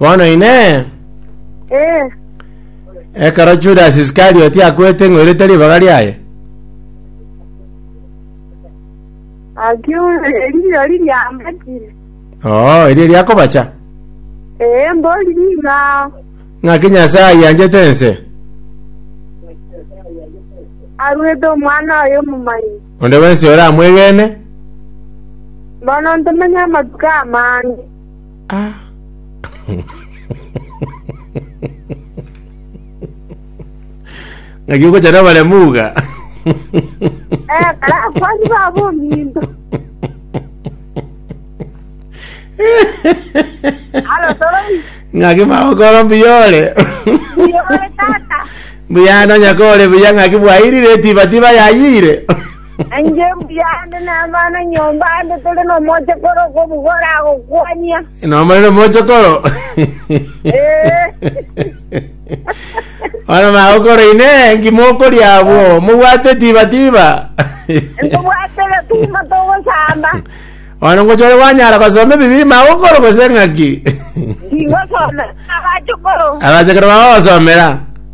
Bono Inee! Eh, Ekero Judas Iskarioti akwete ng'oirete ribaga riaye? akiuna erio riria ambatire. Oo, erio riakobacha. Eh, mbori nigo ao. Ng'aki Nyasae anchete ense. Arwete omwana oye omomanyi. Onde bwensi oramwegene. Bono ntomanye amatuko amange. Ng'aki ogochara abaremu iga? Eh, barakwani babo ominto. Alo toroi, Ng'aki magokora mbuyore. iyore tata. Mbuya nonya kore buya ng'aki bwairire tiba tiba yayire. Nainche mbuya ande namana nyomba ande tore nomochokoro okobugora agokwania. Nomarire mochokoro. Eh. Ora magokoro ine ngima okoria abwo. Mobwate tiba tiba. Nkobwate gatuma togosamba. Ono ngochore wanyara gosoma ebibiri magokoro gose ng'aki. Ndingosoma abachokoro. Abachokoro bagogosomera.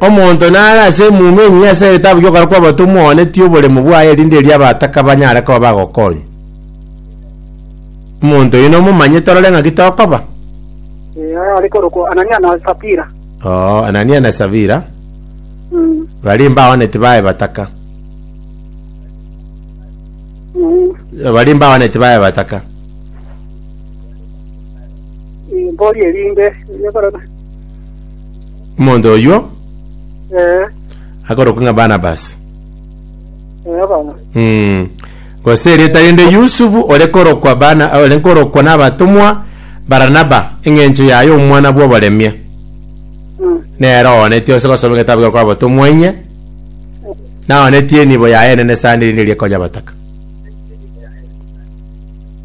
Omonto nare ase emuma enyinye ase egetabu gi'okoria kw'abatomwa oanetie oboremu bwaye erinde erio abataka banyare koba bagokonywa. Omonto oyio nomomanye torore ng'aki tokoba. Eh, aya are korokwa Anania na Sapira. Oo, Anania na Savira Mm, baria mbaoaneti baye bataka. mm. Baria mbaoaneti baye bataka. Eh, Mbori erinde, erio korora. Omonto oyio Eh, akorokwa ng'a Barnabas. eh, abana. Mm. Gose erieta rinde Yusufu ore korokwa bana ore korokwa n'abatomwa Baranaba eng'encho yaye omwana bw'oboremia. Mm. Nero ooneti ose gosoma egetabu gekwa abatomwa inye. Naonetie enibo yaye enene sana erinde riria ekonya abataka.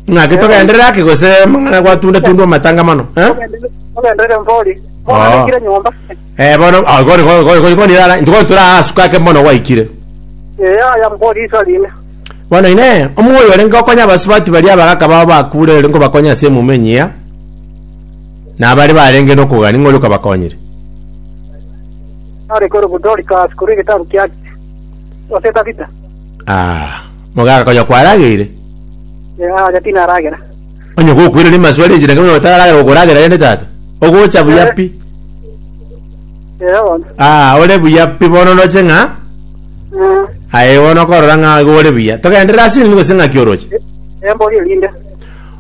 Ng'aki togenderere ake gose mang'ana gwatunda tundwa amatanga mono. Eh? ogendere mbori Ah. oganekire nyomba Eh bono ah gori gori gori gori gori ara gori tura asuka ake mono gwaikire. eya ya mbori iso rine Bono ine omoyo ore ngokonya abasubati baria abagaka bao bakure ore ngobakonya ase emumo enyia. Na abare barenge nokogani ng'ori okabakonyire. are kore budori kasi kore getabu kia ase tabita Ah. Mogaaka konya kwarageire? Ee, aria tinaragera. Onye gokwera rimo asware enchera enke bono otararagera gokoragera rende tata. Ogocha buya Eh. pi. Ee bono. Aa, ore buya pi bono oroche ng'a Eh, aye bono okorora ng'a igo ore buya. Togenderere ase nini gose ng'aki oroche? eh, mbori erinde.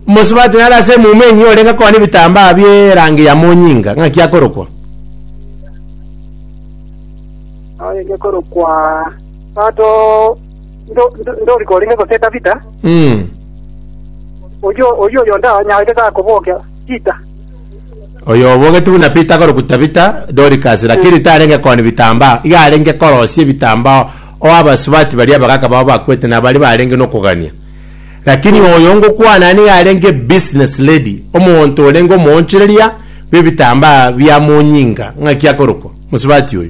Mosubati nare ase emumu enyia orenge koa nebitambaa bie rangi ya monyinga. Ng'aki akorokwa? Aye ngekorokwa. Tato Ndo- ndo- ndori korenge gose Tabita, Mm. oyio oyio oyonde anyaarete gakobokia Pita. Oyo obogete buna Pita akorokwa Tabita, Dorcas, lakini tarenge koni bitambaa, iga arenge korosia ebitambao, o abasubati baria abagaka bao bakwete na baria barenge nokogania. Lakini oyo ngokwana aa niga arenge business lady, omonto orenge omoonchoreria bw'ebitambaa bia monyinga, ng'aki akorokwa, mosubati oyo.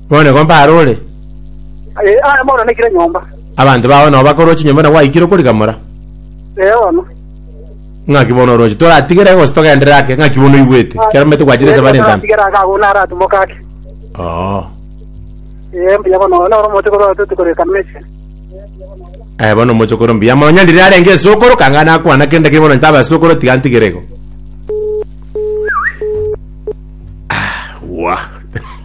Bono nigo mbare ore, Aye, aye bono naikire nyomba. abanto bao nao bakorwa chinyomba na gwaikire okorigamora. Ee bono. Ng'aki bono oroche? Toratigere gose togenderere ake? Ng'aki bono oigwete? Ekero mbaete gwachire ase bare entambe. Atigere ake agwo naratimoke ake. Oo. Ee mbuya bono noro omote korwa toti koreka mesi. Eh, bono omochokoro mbuya mono. Onye ndiri arenge esukuru, kanga nakwana kende ki bono ntabe asukuru tiga ntigere igo. Ah, wah.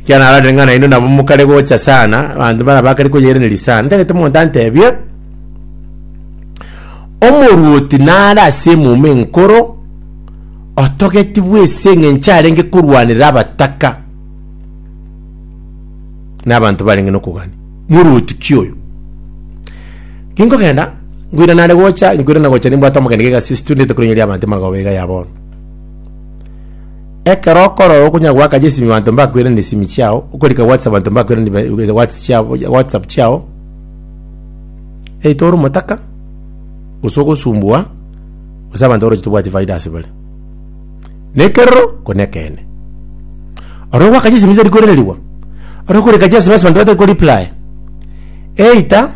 Ekiagera narorire ng'a nainwe nabo mokare gocha sana, abanto baria bakare koyeiraneria sana. Ntagete omonto antebie, Omoruoti nare ase emuma enkoro, otogetigwe ase eng'encho arenge korwanera abataka na abanto barenge nokogania. Moruoti ki oyo? Kinkogenda, nkoira nare gocha, nkoirana gocha nimbwate amagena g'egasi ase tondete korinyeria abanto magao iga ya bono. Ekero okorora okonya goakacha esimi abanto mbakoiraneria esimi chiao, okorika whatsapp abanto mbakoiraneria ba- ebe- whats- chiao- ya- whatsapp chiao, eitwe ore omotaka, gose ogosumbua, gose abanto baroche tobwati faida ase bare. Na ekerero, ko nekeene. Oro ogwakacha esimi tari koiranerigwa, oro okorika chiasimi ase abanto batari ko reply, either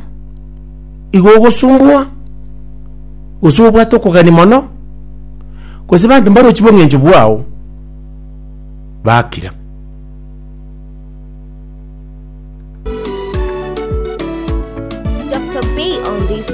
igo ogosumbua, gose obwate okogania mono. Gose banto mbarochi bong'encho bwao bakira.